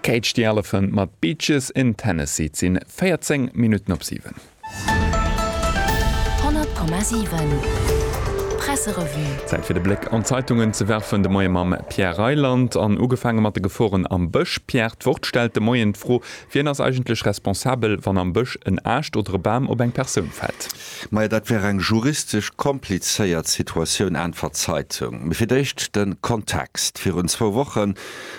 Cage the Elephant mat Beaches in Tennessee. Et sinn 14 Minutten op 7. 100,7 Presserevue. Zäit fir de Bléck an d'Zeitungen ze werfen. De Moie mam Pierre Reyland an ugefaange mat de Geforen am Bësch. Pierre, d'Wort stellt de Moien d'Fro, Wien ass eigentlech responsabel, wann am Bësch en Aascht oder e Bam op eng Persoun fält? Majo dat wär eng juristesch komplizéiert Situatioun, äntwert d'Zeitung. Mee fir d'éischt de Kontext, Virun zwou Woche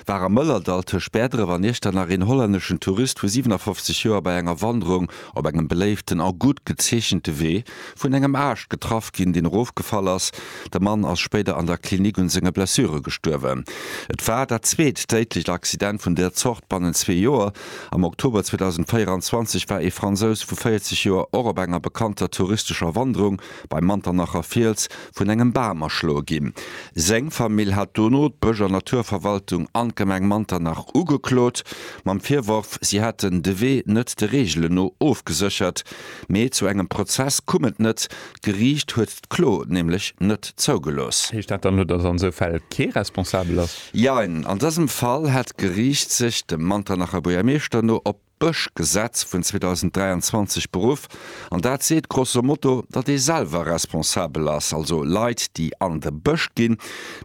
war am Mëllerdall tëscht Bäerdref an Iechternach een hollänneschen Tourist vu 57 Joer bei enger Wanderung op engem beléiften a gutt gezeechente Wee vun engem Aascht getraff ginn, deen erofgefall ass. De Mann ass spéider an der Klinik un senge Blessure gestuerwen. Et war dat zweet déidlecht Accident vun där Zort bannent zwee Joer. Am Oktober 2024 war ee Fransous vu 40 Joer och op enger bekannter touristescher Wanderung beim Manternacher Fiels vun engem Bam erschloe ginn. Seng Famill hat dono d'Bësch an Naturverwaltung an d'Gemeng Manternach ugeklot, mam Virworf, si hätten de Wee net de Reegelen no ofgeséchert. Mee zu engem Prozess koum et net, d'Geriicht huet. d'Klo nämlech net zougelooss. Heescht dat dann, dass an esou Fäll kee responsabel ass? Jein. An dësem Fall hätt d'Geriicht sech, dem Manternacher Buergermeeschter no, op d'Bëschgesetz vun 2023 beruff. An dat seet grosso modo, datt ee selwer responsabel ass. Also Leit, déi an de Bësch ginn,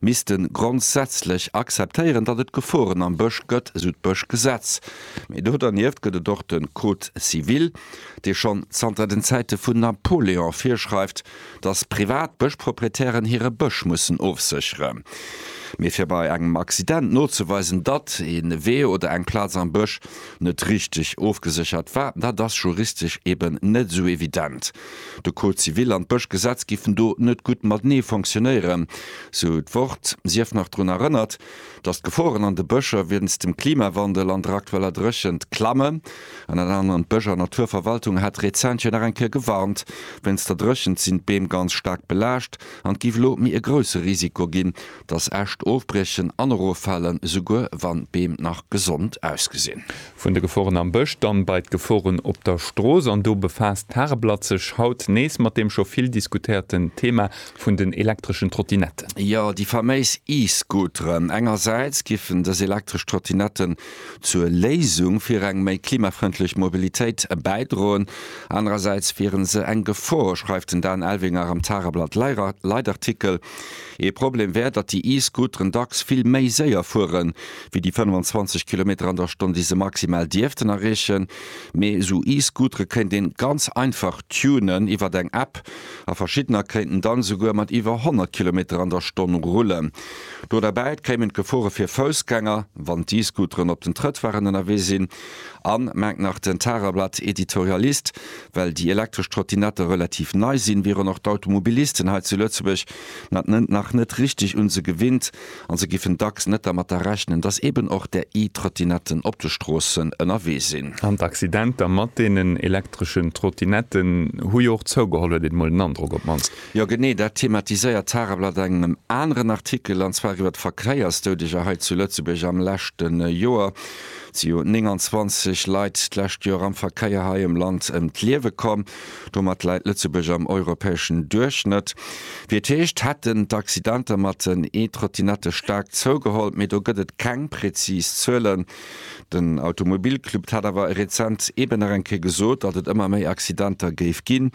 misste grondsätzlech akzeptéieren, datt et Geforen am Bësch gëtt, esou d'Bëschgesetz. Mee do dernieft gëtt et och de Code civil. dee schonn zanter den Zäite vun Napoléon virschreift, datt privat Bëschproprietären hire Bësch mussen ofséchere mee fir bei engem Accident nozeweisen, datt ee Wee oder eng Plaz am Bësch net richteg ofgeséchert war, dat ass juristesch eben net esou evident. De Code civil an d'Bëschgesetz giffen do net gutt matenee fonctionnéieren, sou d'Wort. Si eft nach drun erënnert, datt d'Geforen an de Bëscher wéinst dem Klimawandel an der aktueller Dréchent klammen. An dat aneren, D'Bësch a Naturverwaltung hat rezent jo nach eng Kéier gewarnt, wéinst der Dréchent sinn d'Beem ganz staark belaascht an et géif elo méi e grousse Risiko ginn, dass Äscht ofbriechen an eroffalen, esouguer wann d'Beem nach gesond ausgesinn. Vun de Geforen am Bësch dann bei d'Geforen op der Strooss, an do befaasst d'Tageblatt sech haut nees mat deem scho vill diskutéierten Thema vun den elektreschen Trottinetten. Jo, déi faméis E-Scooteren. Engersäits giffen dës elektresch Trottinetten zur Léisung fir eng méi klimafrëndlech Mobilitéit bäidroen. Anerersäits wiere se eng Gefor, schreift den Dan Elvinger am Tageblatt Leitartikel. Ee Problem wär, datt déi E-Scooteren dacks vill méi séier fuere wéi déi 25 Kilometer an der Stonn, déi se maximal dierften erreechen. Mee esou E-Scootere kéint een ganz einfach tunen iwwert eng App a verschiddener kéinten dann esouguer mat iwwer 100 Kilometer an der Stonn rullen. Do derbäit kéimen d'Gefore fir Foussgänger, wann d'E-Scooteren op den Trëttwaren ënnerwee sinn, an, mengt nach den Tageblatt-Editorialist, well déi elektresch Trottinette relativ nei sinn, wieren och d'Automobilisten hei zu Lëtzebuerg nach net richteg un se gewinnt an se giffen dacks net dermatter rechnen, dass eben och där E-Trottinetten op de Stroossen ënnerwee sinn. An d'Accidenter mat deenen elektreschen Trottinetten hu jo och zougeholl, huet een emol den Androck op d'mannst. Jo genee, dat thematiséiert d'Tageblatt an engem aneren Artikel, an zwar iwwer d'Verkéiersdoudeger hei zu Lëtzebuerg am leschte Joer. Et si jo 29 Leit d'lescht Joer am Verkéier hei am Land ëm d'Liewe komm. Domat läit Lëtzebuerg am europäeschen Duerchschnëtt. Wéi et heescht, hätten d'Accidenter mat den E-Trottinette staark zougeholl, mee do gëtt et keng präzis Zuelen. Den Automobilclub hat awer rezent eeben nach eng Kéier gesot, datt et ëmmer méi Accidenter géif ginn.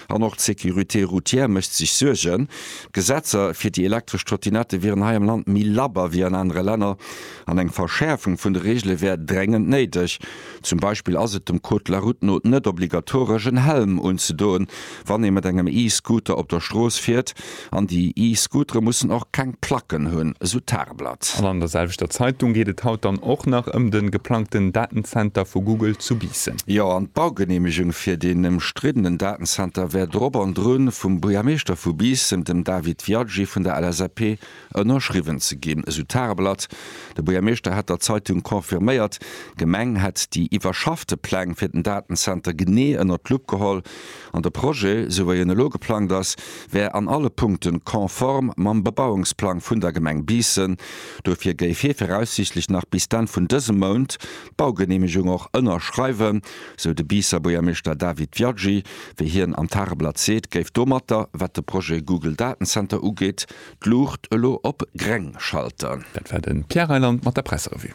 An och d'Sécurité routière mécht sech Suergen. D'Gesetzer fir déi elektresch Trottinette wieren hei am Land méi labber wéi an anere Länner an eng Verschäerfung vun de Reegele wär dréngend néideg. Zum Beispill ass et dem Code de la route no net obligatoresch, en Helm unzedoen, wann ee mat engem E-Scooter op der Strooss fiert. An déi E-Scootere mussen och keng Placken hunn, esou d'Tageblatt. An an der selwechter Zeitung geet et haut dann och nach ëm de geplangten Datenzenter vu Google zu Biissen. Jo, an d'Baugeneemegung fir deen ëmstriddenen Datenzenter wär drop an drun, vum Buergermeeschter vu Biissen, dem David Viaggi vun der LSAP, ënnerschriwwen ze ginn, esou d'Tageblatt. De Buergermeeschter hätt der Zeitung confirméiert, d'Gemeng hätt déi iwwerschaffte Pläng fir den Datenzenter genee ënnert d'Lupp geholl. An de Projet, esou wei en elo geplangt ass, wär an alle Punkte konform mam Bebauungsplang vun der Gemeng Biissen. Dofir géif hie viraussiichtlech nach bis d'Enn vun dësem Mount d'Baugeneemegung och ënnerschreiwen, esou de Biisser Buergermeeschter David Viaggi. Wéi hien am Tageblatt seet, géif domatter, wat de Projet Google Datenzenter ugeet, d'Luucht elo op gréng schalten. Dat war de Pierre Reyland mat der Presserevue.